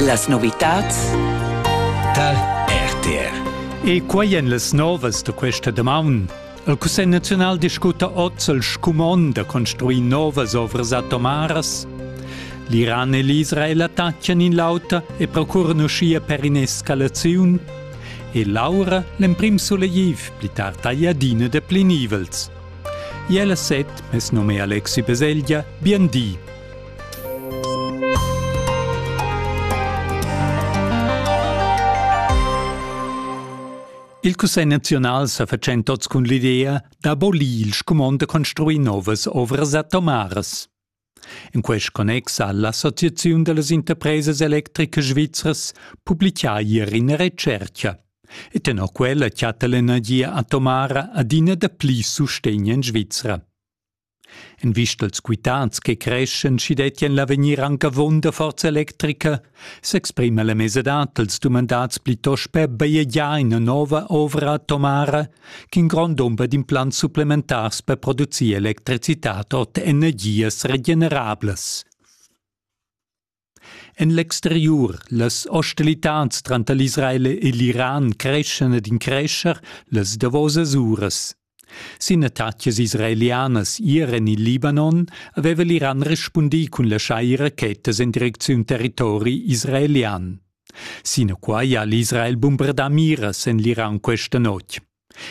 Las novitads tal RTR. E quai en las novas da questa damaun. Il Cussegl naziunal discuta oz il scumon da construir novas ovras atomaras. L'Iran e l'Israel attaccan in l'auter e procuran uschia per in'escalaziun. E l'aura l'emprim sulegtiv, pli tard ei adina de plinivels. Iel a set, mes nome è Alexi Beseglia, bien di! Il Cussegl nazional sa fatschent oz cun l'idea d'abolir il scumond da construir novas ovras atomaras. In quest connex ha l'Associaziun dallas interpresas electricas svizras publicà ier ina retscherca. E tenor quella chatta l'energia atomara adina dapli sustegn en Svizra. En vista als quitants che creschen, schi dettien l'avegnir anc avon da forza electrica, s'exprima la mesadad dels dumandats plitost per bajegiar ina nova ovra atomara ch'in grond dumber d'implants supplementars per producir electricitad ord energias regenerablas. En l'exteriur, las hostilitans tranter l'Israel e l'Iran creschan ed increscher las davosas uras. Sin attacas israelianas ier en il Libanon aveva l'Iran respundì cun laschar rachetas en direcziun territori israelian. Sinaquai ha l'Israel bumbardà miras en l'Iran questa notg.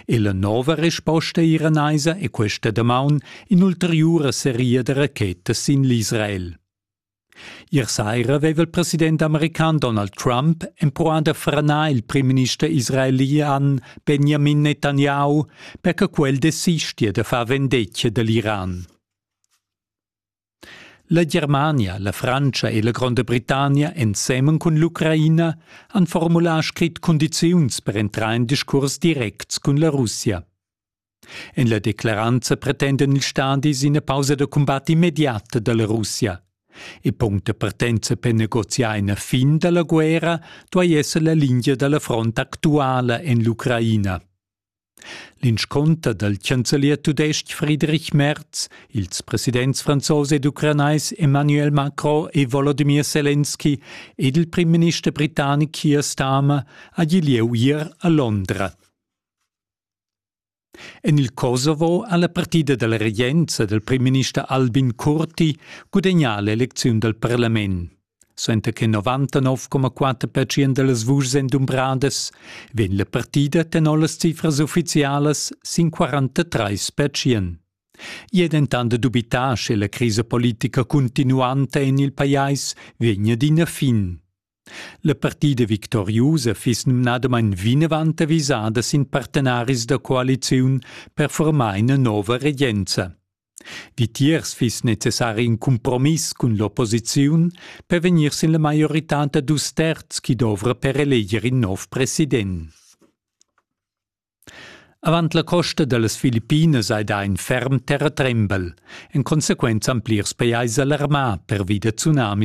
E la nova resposta iranaisa è questa damaun in'ulteriura seria da rachetas sin l'Israel. Ier saira aveva il president american Donald Trump empruà da franar il primminister israelian Benjamin Netanyahu per che quel desistia da far vendetga da l'Iran. La Germania, la Frantscha e la Gronda Britannia ensemen cun l'Ucraina han formulà scrit cundiziuns per entrar in discurs direct cun la Russia. En la declaranza pretenden ils stadis ina pausa da cumbat immediata da la Russia. E puncta partenza per negoziar ina fin da la guerra duai esser la linea da la front actuala en l'Ucraina. L'inscunter dal chancelier tudestg Friedrich Merz, ils presidents franzos ed ucranais Emmanuel Macron e Volodymyr Zelensky ed il primminister britannic Keir Starmer ha gì lieu ier a Londra. En il Kosovo ha la partida dalla regenza dal primminister Albin Kurti gudagnà l'elecziun dal parlament. Suenter che 99,4 percent dallas vuschs ein dumbradas, vegn la partida tenor las cifras ufficialas sin 43 percent. I è dentant dubità, sche la crisa politica continuanta en il pajais vegnia d'ina fin. La partida victoriusa fiss numnadamain vinavant avisada sin partenaris da coaliziun per formar ina nova regenza. Vitiers fiss necessari in cumpromiss cun l'opposiziun per vegnir sin la maioritad da dus terz chi dovra per eleger in nov president. Avant la costa da las Filippinas hai dà in ferm terratrembel. En consequenza han plirs pajais alarmà pervi da tsunamis